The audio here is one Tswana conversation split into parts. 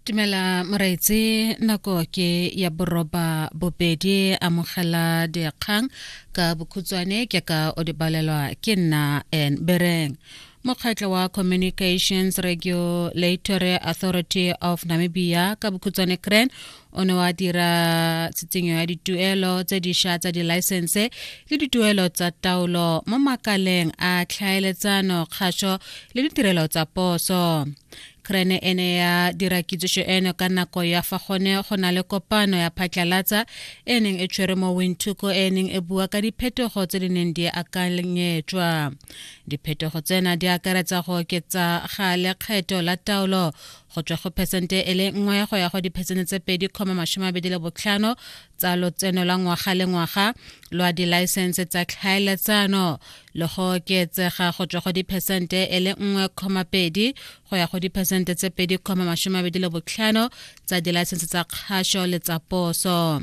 Tumela Moraitse nako ke ya boroba bobedi amogela dikgang ka bokhutswane ke ka o di balelwa ke nna and bereng mokgatlho wa communications regulatory authority of namibia ka bokhutswane cran o ne wa dira tshenyo ya dituelo tse dišwa tsa dilaesense le dituelo tsa taolo mo makaleng a tlhaeletsano kgašo le ditirelo tsa poso krene e ne ya dira kitsišo eno ka nako ya fa gone go na le kopano ya phatlalatsa e neng e tshwere mo winthuko e neng e bua ka diphetogo tse di neng di akanyetswa diphetogo tsena di akaretsa go oketsa ga lekgetho la taolo go tswa go phesente e le nngwe go ya go diphesente tse pedi kgoma masome abedi le botlhano tsa lotseno la ngwaga le ngwaga lwa dilaesense tsa tlhaeletsano le go oketsega go tswa go diphesente e le nngwe kgoma pedi go ya go diphesente tse pedi kgoma masome abedi le botlhano tsa dilaesense tsa kgašo le tsa poso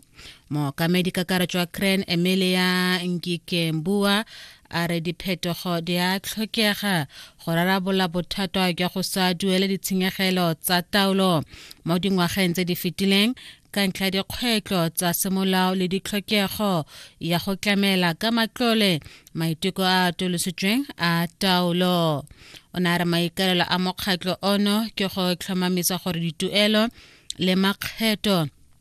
mookamedi kakaretso wa cran emilia nkikembua a re diphetogo di a tlhokega go rarabola bothata jwa go sa duele ditshenyegelo tsa taolo mo dingwageng tse di fetileng ka ntlha dikgwetlho tsa semolao le ditlhokego ya go tlamela ka matlole maiteko a atolositsweng a taolo o ne a re maikalelo a mokgatlho ono ke go tlhomamisa gore dituelo le makgetho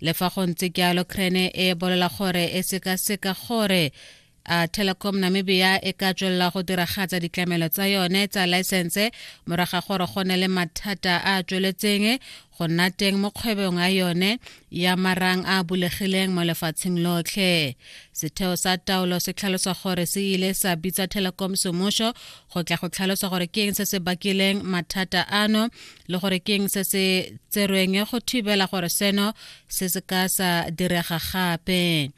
le fa go ntse jalo crane e bolela gore e sekaseka gore a telecom namibia e ka tswelela go diragatsa ditlamelo tsa yone tsa laesense moraga gore go ne le mathata a a tsweletseng go nna teng mo kgwebong ya yone ya marang a bulegileng mo lefatsheng lotlhe setheo sa taolo se tlhalosa gore se ile sa bitsa telecom semuso go tla go tlhalosa gore ke eng se se bakileng mathata ano le gore ke eng se se tserweng go thibela gore seno se se ka sa direga gape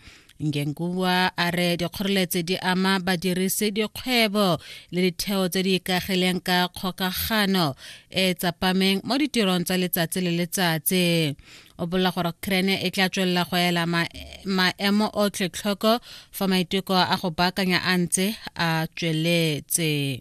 ngenkuwa a re dikgoreletsi di ama badirisi dikgwebo le ditheo tse di ikagileng ka kgokagano e tsapameng mo ditirong tsa letsatsi le letsatsi o bolela gore krene e tla tswelela go ela maemo otlhe tlhoko fa maiteko a go baakanya a ntse a tsweletse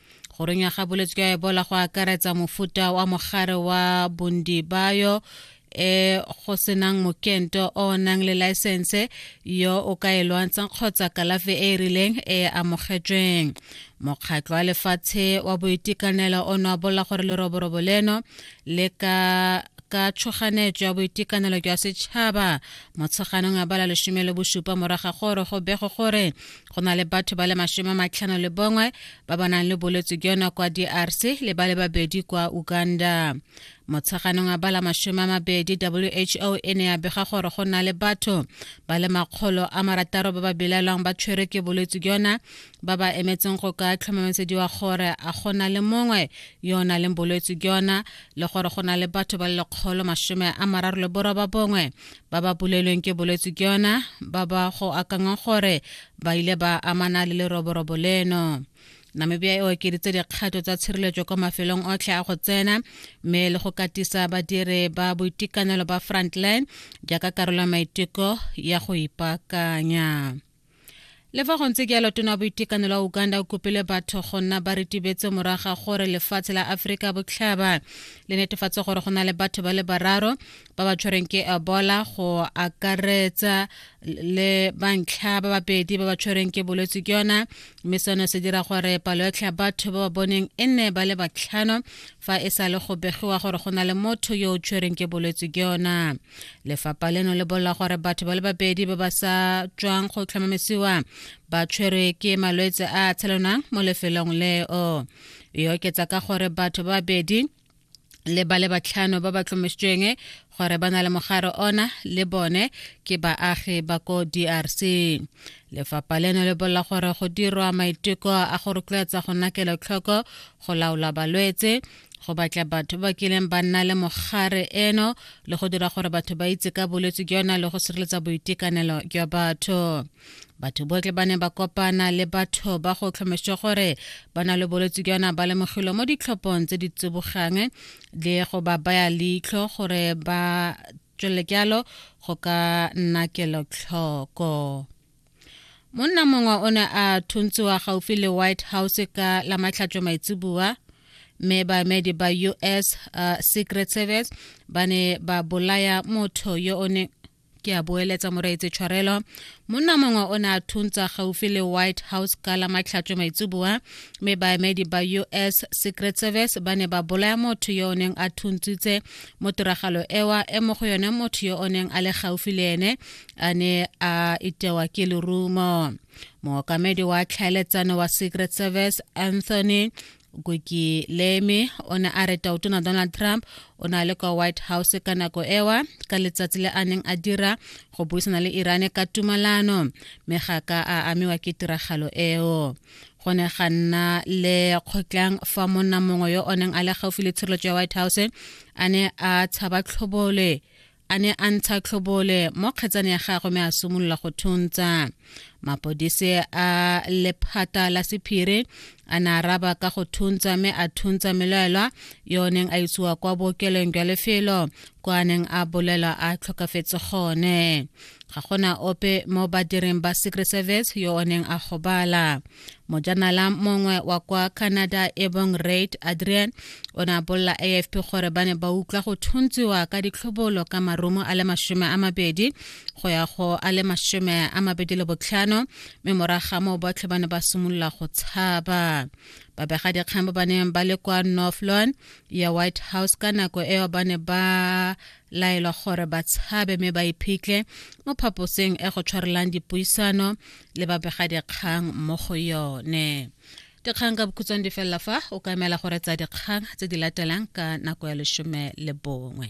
go runya ga bolwetse jwa ebola go akaretsa mofuta wa mogare wa bondibayo e go senang mokento o nang le laesense yo o ka e lwantshang kgotsa kalafi e e rileng e e amogetsweng mokgatlho wa lefatshe wa boitekanelo o noabola gore leroborobo leno le ka ka tshoganetso ya boitekanelo jwa setšhaba motsheganong ya bala lesome le bosupa moraga gore go bego gore go na le batho ba le masome matlhano le bongwe ba ba nang le bolwetse jona kwa drc le ba le babedi kwa uganda motsheganong a bala masome a mabedi who e ne ya bega gore go na le batho ba le makgolo a marataro ba ba belaelwang ba tshwere ke bolwetse jona ba ba emetseng go ka tlhomamisediwa gore a go na le mongwe yo o na leng bolwetse jona le gore go na le batho ba le lekgolo masome a mararo le boroba bongwe ba ba bolelweng ke bolwetse ke yona ba ba go akangwa gore ba ile ba amana le leroborobo leno namibia e okeditse dikgato tsa tshireletso kwa mafelong otlhe a go tsena mme le go katisa badiri ba boitekanelo ba frontline jaaka karolo ya maiteko ya go ipaakanya le fa go ntse ke yalo tona boitekanelo wa uganda o kopile batho go nna ba retibetse moraga gore lefatshe la aforika botlhaba le netefatse gore go na le batho ba le bararo ba ba tshwereng ke ebola go akaretsa le bantlha ba babedi ba ba tshwereng ke bolwetse ke yona mme seno se dira gore palo yotlhe ya batho ba ba boneng e nne ba le batlhano fa e sa le go begiwa gore go na le motho yo o tshwereng ke bolwetse ke yona lefapha leno le bolela gore batho ba le babedi ba ba sa tswang go tlhomamisiwa ba tshwerwe ke malwetse a a tshelonang mo lefelong leo e oketsa ka gore batho ba babedi le ba le batlhano ba ba tlomesitsweng gore ba na le mogare ona le bone ke baagi ba ko drc lefapha leno le bolela gore go dirwa maiteko a go rotloetsa go nakela tlhoko go laola balwetse go batla batho ba kileng ba nna le mogare eno le go dira gore batho ba itse ka bolwetse jona le go sireletsa boitekanelo jwa batho batho botlhe ba ne ba kopana le batho ba go tlhomešwa gore ba na le bolwetse jona ba lemogilwe mo ditlhophong tse di tsibogang le go ba baya leitlho gore ba tswele jalo go ka nna kelotlhoko monna mongwe o ne a thontshiwa gaufi le white house ka la matlhatšo maitseboa mme baemedi ba us uh, secret service ba ne ba bolaya motho yo o ne ke a boeletsa moreetse tshwarelo monna mongwe o ne a thuntsa gaufi le white house ka la matlhatso maitseboa mme baemedi ba us secret service ba ne ba bolaya motho yo o neng a thuntsitse mo tiragalo ewa e mo go yone motho yo o neng a le gaufi le ene a ne a itewa ke lerumo mookamedi wa tlhaeletsano wa secret service anthony goki leme o ne a re tautona donald trump o na le kwa white house ka nako ewa ka letsatsi le a neng a dira go buisana le irane ka tumalano mme ga ka a amiwa ke tiragalo eo go ne ga nna le kgotlang fa monna mongwe yo o neng a le gaufi le tshireletso ya white house a ne a tshaba tlhobole a ne a ntsha tlhobole mo kgetsane ya gagwe me a simolola go thuntsa mapodise a lephata la sephiri a ne a raba ka go thuntsa me a thuntsa melaelwa yo neng a isiwa kwa bookelong jwa lefelo kwa a neng a bolelwa a tlhokafetse gone ga gona ope mo badireng ba secret service yo o neng a gobala mojanala mongwe wa kwa canada e bong raid adrian o ne a bolela afp gore ba ne ba utlwa go thuntsiwa ka ditlhobolo ka marumo a le masome a mabedi go ya go a le masome a mabedi le botlhano mme moraga moo botlhe ba ne ba simolola go tshaba babegadikgang ba ba neng ba le kwa north lawn ya white house ka nako eo ba ne ba laelwa gore ba tshabe mme ba iphitlhe mo phaposeng e go tshwarelang dipuisano le babegadikgang mo go yone dikgang ka bokhutsong di felela fa o ka emela gore tsa dikgang tse di latelang ka nako ya lesome le bongwe